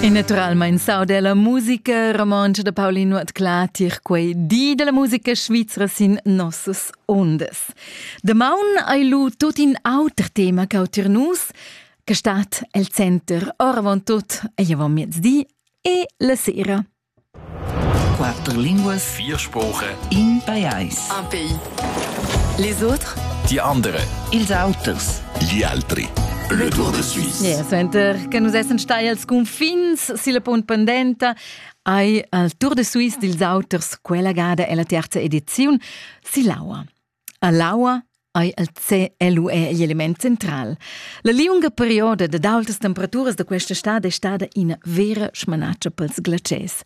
E naturalmein sau della musica romontscha da Paulin Nuotclà tier quei di della musica svizra sin nossas ondas. Damaun ei lu tut in auter tema ch'au tier nus, che stat el center oravontut ei avon miezdi e la sera. Quatter linguas. Vier Sprachen. In pajais. Un pays. Les autres? Die andere. Ils auters. Gli altri. Le Tour de Suisse. Yeah, senter che nus essen stai als confins silla punt pendenta ai al Tour de Suisse dils auters quella gada ella terza ediziun sillaua. A l'aua ei il CLUE igl element central. La liunga perioda dad aultas temperaturas da questa stad è stada ina vera smanatscha pels glaciers.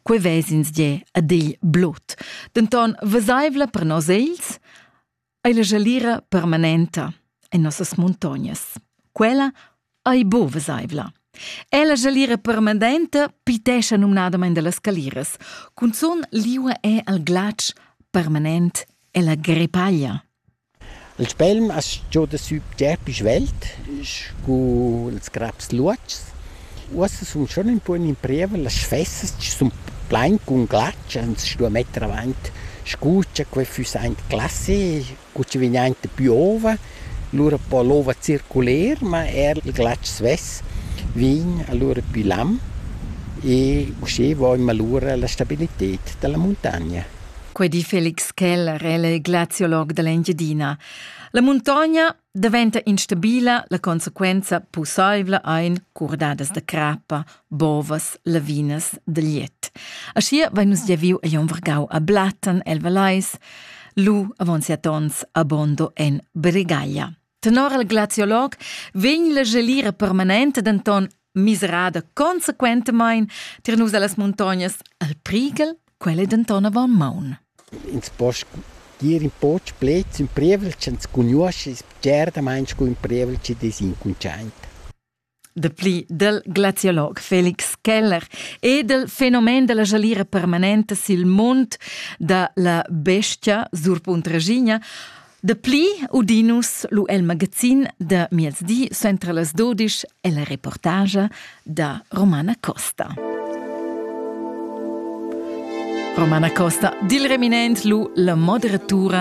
Quei vesins die ad igl blut. Denton vesaivla per nos egls ei la gelira permanenta en nossas muntognas. Quella ei bo veseivla. Ella jalira permanenta pitescha numnadamain dallas caliras. Cunzun liua è al glatsch permanent ella grepaglia. Il spelm as giò da sü tepis velt, scu ils craps luatschs. Uossa sun schon ün pun in prieva, las sfessas sun plain cun glatsch, ans stu metter avant scuccia, quai füss aint classe. cu chi vegn aint da pü ova, lura po l'ova circuler, ma eir il glatsch svess vegn alura pü lam e usché voimma lura la stabilited da la muntagna. Quei di Felix Keller el è glaziolog dall'Engiadina. La muntogna daventa instabila, la consequenza pussaivla ein curdadas da crappa, bovas, lavinas da liet. Aschia vein nus gia viu egl vargau a Blatten el Valais, lu avon siat ons a Bondo en Bregaglia. Tenor il glaziolog vegn la gelira permanente denton miserada consequentemein tier nus allas montognas al Priegel, quelle denton avon maun. Ins po dir in po plets in prievel, che ins conosce, es certa meins cu in prievel che des incunciaint. Dapli dal glaziolog Felix Keller e dal fenomen da la jalira permanenta sil mund da la bestia Surpunt Regina Dapli udinus lu el magazin da miezdi sentra las dodisch e la reportagia da Romana Costa. Romana Costa, dil reminent lu la moderatura